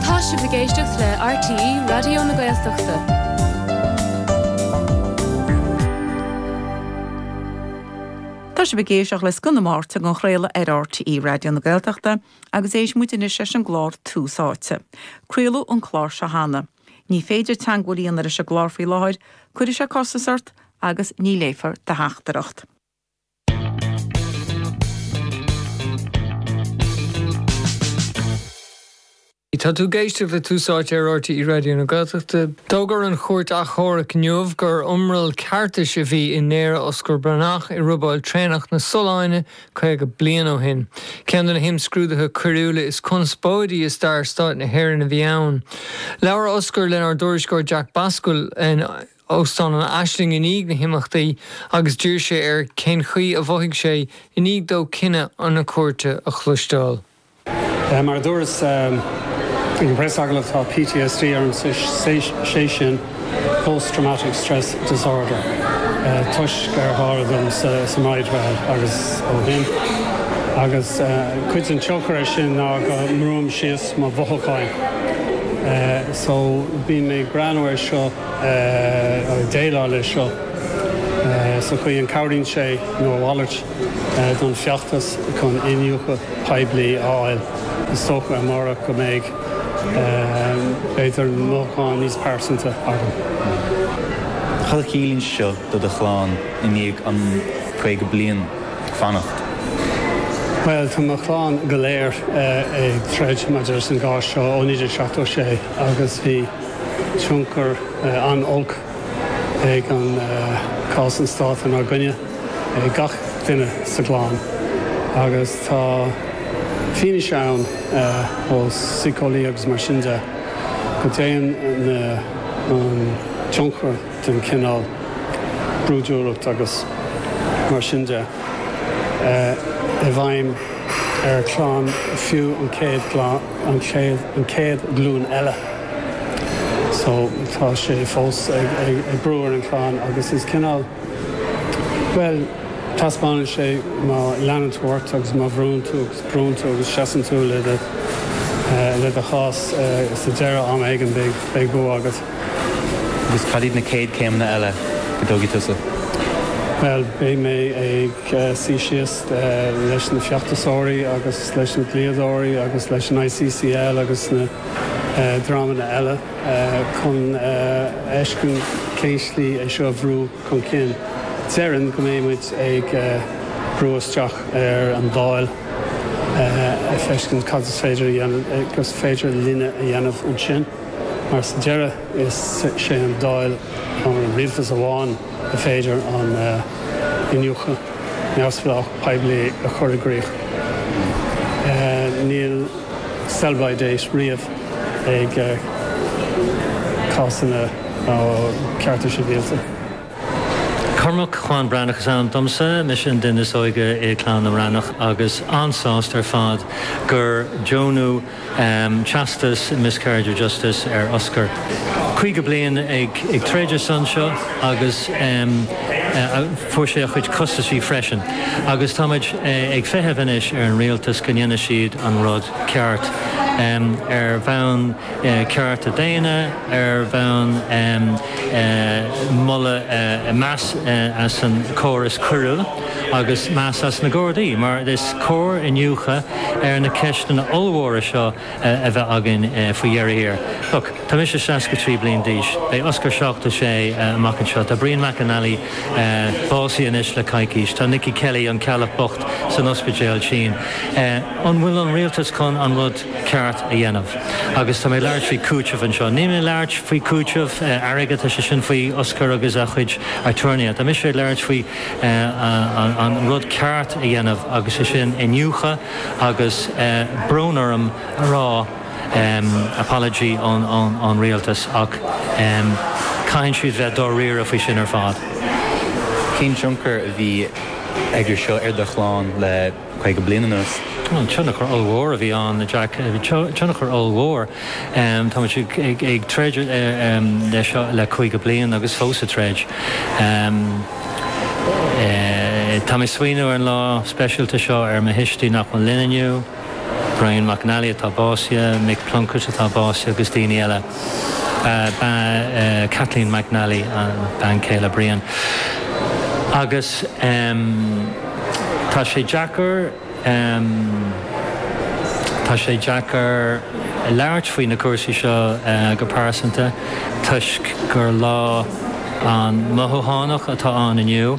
Tá sibh ag éisteacht le RTÉ Raidió na Gaeltachta. Tá sibh ag éisteacht le scoth na Máirt ag an chraoladh ar RTÉ Raidió na Gaeltachta agus éistfidh muid anois leis an gclár Tús Áite. Craoladh an clár seo cheana. Ní féidir teagmháil a dhéanamh leis an gclár faoi láthair, cuirfidh sé costas ort agus ní léifear do theachtaireacht. Tá tú ag éisteacht le Tús Áite ar RTÉ Raidió na Gaeltachta. D'fhógair an Chúirt Achomhairc inniu gur iomrall ceartais a bhí i ndaoradh Osgur Breathnach i robáil traenach na Solláine 50 bliain ó shin. Ceann de na himscrúduithe coiriúla is conspóidí i stair Stáit na hÉireann a bhí ann. Labhair Osgur lenár dtuairisceoir Jack Bascomhail. óstán an Ashling i ndiaidh na himeachtaí agus d'iarr sé air cén chaoi a mhothaigh sé i ndiaidh dó cinneadh na cúirte a chloisteáil. Mar a dúras ag an bpreasagallamh, tá PTSD orm, sé sin Post Traumatic Stress Disorder, toisc ar tharla dom sa mBridewell agus ó shin. Agus cuid den tionchar ar sin ná go mbrúim síos mo mhothúcháin. So bíonn mé ag breathnú ar seo. ag déileáil leis seo sa chaoi an cabhraíonn sé nó a mhalairt don feachtas chun iniúchadh poiblí a fháil. Is dócha amárach go mbeidh b'fhéidir mothúcháin níos pearsanta agam. Cad a chiallaíonn sé seo do do chlann i ndiaidh an 50 bliain ag fanacht? Bhuel, tá mo chlann go léir ag troid maidir leis an gcás seo ón 1976 agus bhí. tionchar an-olc ag an cás an Stát inár gcoinne ag gach duine sa gclann agus tá fianaise ann ó síceolaí agus mar sin de go dtéann na an tionchar den chineál brúidiúlacht agus mar sin de i bhfeidhm ar chlann fiú an chéad gclann. an chéad an chéad ghlúin eile so tá sé fós ag ag ag brú ar an chlann agus is cineál bhuel taispeánann sé má leanann tú ort agus má bhrúnn tú agus brúnn tú agus seasann tú le do le do chás sa deireadh am éigin beidh beidh bua agat. Agus cad iad na céad céimeanna eile go dtógfaidh tusa? Bhuel beidh mé ag suí síos leis na feachtasóirí agus leis na dlíodóirí agus leis an ICCL agus na dreamanna eile chun fheiscint cén slí é seo a bhrú chun cinn. Déarfainn go mbeidh muid ag brú isteach ar an Dáil ag feiscint cad is féidir a dhéanamh agus is féidir linne a dhéanamh ansin mar sa deireadh is é an Dáil nó an Rialtas amháin ar féidir an iniúchadh neamhspleách poiblí a chur i gcrích. Níl sell-by date riamh ag cásanna cearta sibhialta. Cormac Cuan Breathnach is ainm domsa. Mise an duine is óige i gclann na mBreathnach agus an-sásta ar fad gur deonaíodh Teastas Miscarriage of Justice ar Oscar. 50 bliain ag troid ar son seo agus fuair sé a chuid costaisí freisin agus táimid ag feitheamh anois ar an Rialtas go ndéanfaidh siad an rud ceart ar bhonn cearta daonna, ar bhonn mórmheas as an córas coiriúil. agus meas as na Gardaí mar is cóir iniúchadh ar na ceisteanna ollmhóra seo a bheith againn faoi dheireadh thiar. Tá mise seasca trí bliain d'aois, beidh Oscar seachtó sé amach anseo, tá Brian McNally básaithe anois le coicís, tá Nicky Kelly, an Ceallach bocht, san ospidéal tinn. An bhfuil an rialtas chun an rud ceart a dhéanamh? Agus níl mé ag labhairt faoi chúiteamh anseo, níl mé ag labhairt faoi chúiteamh airgid, tá sé sin faoi Oscar agus a chuid aturnaetha, tá mise ag labhairt faoi an rud ceart a dhéanamh agus é sin iniúchadh agus brón orm a rá apology ón Rialtas ach caithfidh siad bheith dáiríre faoi sin ar fad. Cén tionchar a bhí aige seo ar do chlann le. caoga bliain anuas. Tionchar ollmhór a bhí ann, a Jack, tionchar ollmhór. Táimid ag troid seo le caoga bliain agus fós ag troid. Tá mé ag smaoineamh ar an lá speisialta seo ar mo thuistí nach bhfuil linn inniu, Brian McNally atá básaithe, Mick Plunkett atá básaithe agus daoine eile. Kathleen McNally bean chéile Brian agus tá sé deacair tá sé deacair labhairt faoi na cúrsaí seo go pearsanta toisc gur lá an-mhothúchánach atá ann inniu.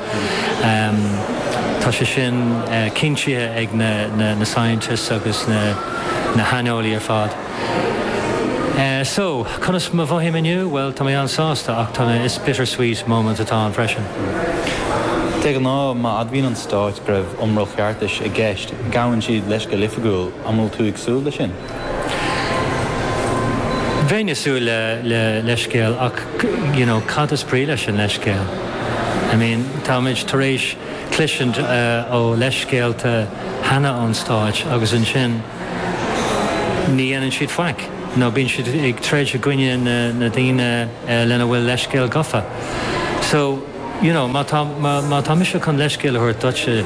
Tá sé sin cinntithe ag na scientists agus na haineolaí ar fad. So, conas mar a mhothaím inniu? Bhuel, tá mé an-sásta ach tá, is bittersweet moment atá ann freisin. De ghnáth, má admhaíonn an Stát go raibh iomrall cheartais i gceist, gabhann siad leithscéal go hoifigiúil, an bhfuil tú ag súil le sin? Bheinn ag súil le leithscéal ach you know cad is brí leis an leithscéal? I mean táimid tar éis cloisint ó leithscéalta cheana ón Stáit agus ansin ní dhéanann siad faic nó bíonn siad ag troid i gcoinne na daoine lena bhfuil leithscéal gofa. So. you know má má tá mise chun leithscéal a thabhairt duitse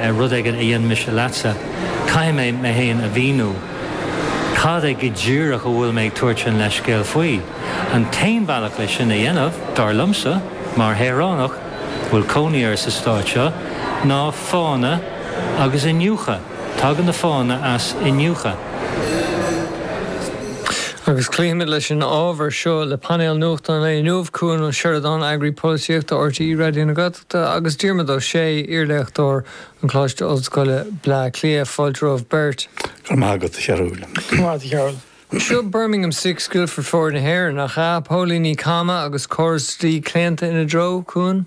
ar rud éigin a dhein mise leatsa caithfidh mé mé fhéin a mhíniú cad é go díreach a bhfuil mé ag tabhairt an leithscéal faoi. An t-aon bhealach leis sin a dhéanamh, dar liomsa, mar shaoránach a bhfuil cónaí orm sa Stát seo, ná fáthanna agus iniúchadh. Tagann na fáthanna as iniúchadh. Agus cloífimid leis an ábhar seo le painéal nuachtáin lae inniu, Cuan Ó Seireadáin, Eagarthóir Polaitíochta RTÉ Raidió na Gaeltachta agus Diarmuid Ó Sé, iarléachtóir an Choláiste Ollscoile, Bleá Cliath. Fáilte romhaibh beirt. Go raibh maith agat, a Fhachtna. Seo Birmingham Six, Guildford Four na hÉireann, nach ea? Póilíní cama agus córas dlí claonta ina dtreo, Cuan?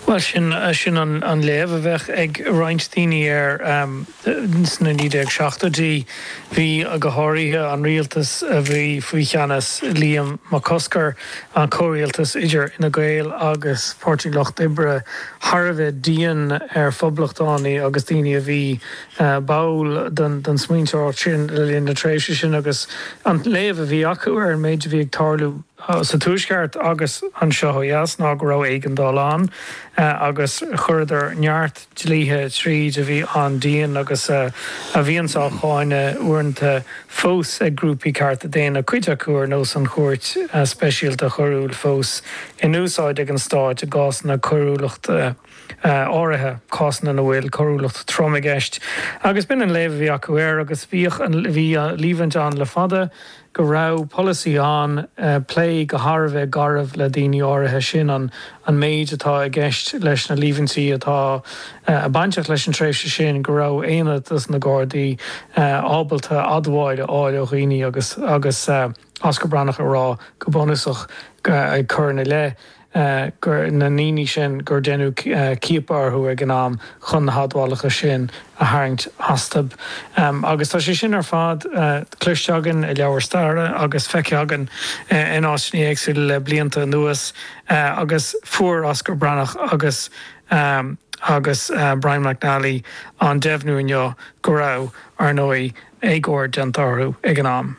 Bhuel, sin sin an léamh a bheadh ag roinnt daoine air. Sna 1970idí, bhí, go háirithe an rialtas a bhí faoi cheannas Liam Mac Cosgair, an comhrialtas idir Fhine Gael agus Páirtí an Lucht Oibre, thar a bheith dian ar phoblachtánaigh agus daoine a bhí báúil don smaointeoireacht sin le linn na tréimhse sin agus an léamh a bhí acu ar an méid a bhí ag tarlú. sa Tuaisceart agus anseo ó dheas ná go raibh éigeandáil ann agus chuireadar neart dlíthe tríd a bhí an-dian agus a bhíonns á cháineadh uaireanta fós ag grúpaí cearta daonna, cuid acu ar nós an Chúirt Speisialta Choiriúil fós in úsáid ag an Stát i gcásanna coiriúlachta áirithe, cásanna ina bhfuil coiriúlacht throm i gceist. Agus b'in an léamh a bhí acu air agus bhí an líomhain ann le fada, go raibh polasaí ann plé go han-gharbh le daoine áirithe, sin an méid atá i gceist leis na líomhaintí atá bainteach leis an tréimhse sin, go raibh aonad de na Gardaí ábalta admháil a fháil ó dhaoine agus Osgur Breatnach á rá go bunúsach ag cur ina leith. na ndaoine sin gur deineadh ciapadh orthu ag an am chun na hadmhálacha sin a tharraingt astu. Agus tá sé sin ar fad cloiste againn i leabhair staire agus feicthe againn in áiteanna éagsúla le blianta anuas agus fuair Osgur Breatnach agus agus Brian McNally an deimhniú inniu go raibh, ar ndóigh, éagóir déanta orthu ag an am.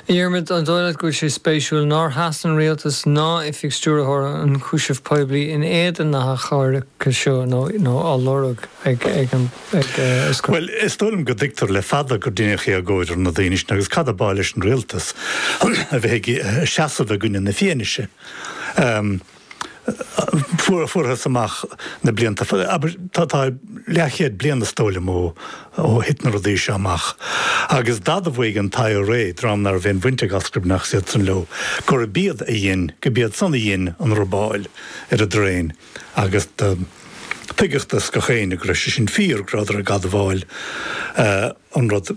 A Dhiarmaid, an dóigh leat go bhfuil sé spéisiúil nár sheas an Rialtas ná Oifig Stiúrthóir na nIonchúiseamh Poiblí in éadan na hachainí seo nó á lorg ag. Bhuel, is dóigh liom go dtuigtear le fada gur deineadh éagóir ar na daoine sin agus cad ab áil leis an Rialtas a bheith ag seasamh i gcoinne na fianaise? fuar fuarthas amach na blianta, abair, tá leathchéad bliain is dóigh liom ó thit na rudaí seo amach, agus d'admhaigh an t-IRA, dream ná raibh aon bhaint ag Osgur Breatnach ná iadsan leo, gurb iad a dhein, go b'iad san a dhein an robáil ar an dtraein, agus tuigeadh do gach éinne go raibh sé sin fíor, go rabhadar ag admháil. an rud.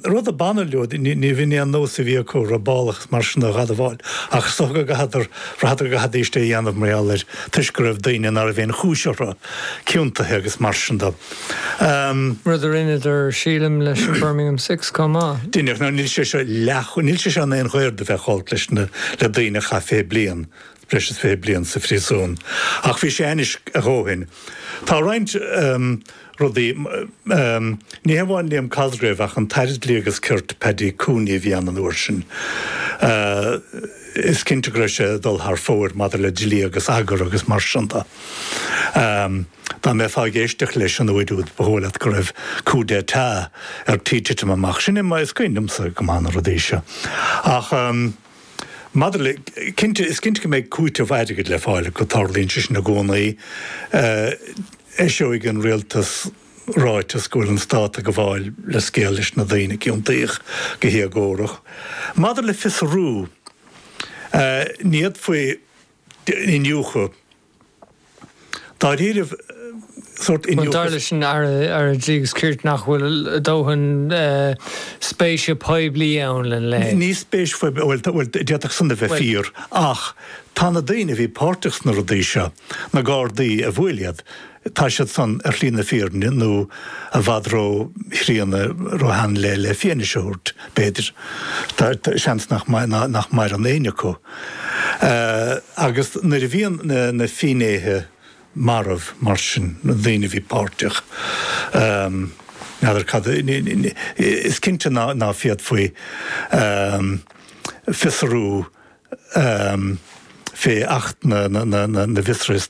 Rud a bhain leo, níorbh aon nós a bhí acu robálacha mar sin a dh'admháil, ach is dócha gur bhraitheadar, bhraitheadar go gcaithfidíst é a dhéanamh mar gheall air toisc go raibh daoine ná raibh aon chúis orthu, ciontaithe agus mar sin de. Rud a rinneadar, sílim, leis an Birmingham Six chomh maith. Dheineadar. Níl sé seo leath, níl sé seo in aon ghoir do bheith chomh olc leis na, le daoine a chaith fiche bliain breis is 20 bliain sa phríosún ach bhí sé ainnis a dhóthain. Tá roinnt rudaí ní hamháin Liam Cosgrave ach an tAire Dlí agus Cirt, Paddy Cooney, a bhí ann an uair sin, is cinnte go raibh sé ag dul thar fóir maidir le dlí agus eagar agus mar sin de. Dá mbeifeá ag éisteacht leis an uair úd ba dhóigh leat go raibh coup d'état ar tí titim amach. Sin é, is is cuimhin liomsa go maith na rudaí seo. Ach. Maidir le, cinnte, is cinnte go mbeidh cúiteamh airgid le fáil acu, tarlaíonn sé sin i gcónaí. Eiseoidh an rialtas ráiteas go bhfuil an stát ag gabháil leithscéal leis na daoine a ciontaíodh go héagórach. Maidir le fiosrú, ní fhéadfaí iniúchadh. dáiríribh sórt Bhuel, dar leis an Aire Dlí agus Cirt nach bhfuil dóthain spéise poiblí ann lena leithéid. Níl spéis phoiblí, bhuel, d'fhéadfadh san a bheith fíor ach tá na daoine a bhí páirteach sna rudaí seo, na Gardaí a bhuail iad, tá siad san ar shlí na fírinne nó i bhfad róchríonna, róshean le le fianaise a thabhairt, b'fhéidir. Tá seans nach nach maireann éinne acu. Agus nuair a bhíonn na fínnéithe marbh mar sin, na daoine a bhí páirteach, n'fheadar cad a is cinnte ná ná féadfaí fiosrú fé Acht na na na na bhFiosruithe